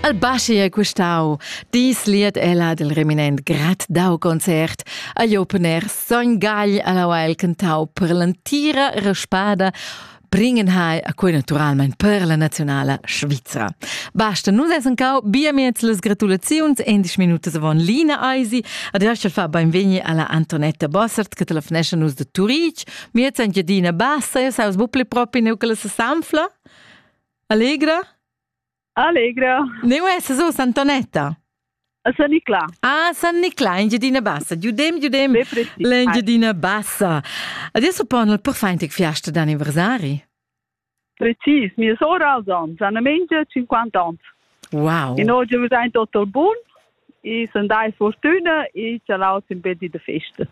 El baschi è custau. Dis liet ella del reminent grad dau concert. Agli open air sogn gagl alla Weil cantau per l'entira raspada bringen hai a quei naturalment per la nazionala Svizra. Basta, nus essen cau bia miez les gratulaziuns, endisch minutas avon Lina Eisi, ad erschel fa beinvegni alla Antonetta Bossert, che telefonesce nus de Turitg, miez en Gedina Bassa, e saus bupli propi neu che la sanfla? Allegra? Allegra. Ne uè, se so Santonetta? A San Niclà. Ah, San Niclà, Engiadina Bassa. Giudem, giudem. L'Engiadina Bassa. Adesso ponno il porfaintic fiasta d'anniversari? Precis, mia sora als ans, Anna Mengia, 50 ans. Wow. E noi abbiamo ein Dottor Bun e sono dai fortuna e c'è l'aut in bedi de festa.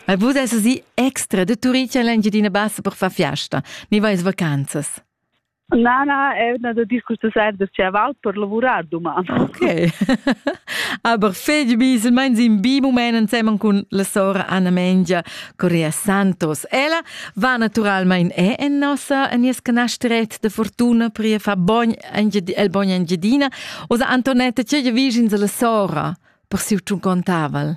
E vous essere extra de turiti all'Engiadina Bassa per far fiasta, ne vais vacanzas? Na, na, è una da discussione da chaval per lavurar doman. Ok. Aber fegl bis meins in bi moment ensemen con la sora Anna Mengia Corea Santos. Ella va naturalmein è en nossa en nies canasteret de fortuna per ir fa bogn el bogn Engiadina o sa Antonetta ce je vicins alla sora per si un contaval.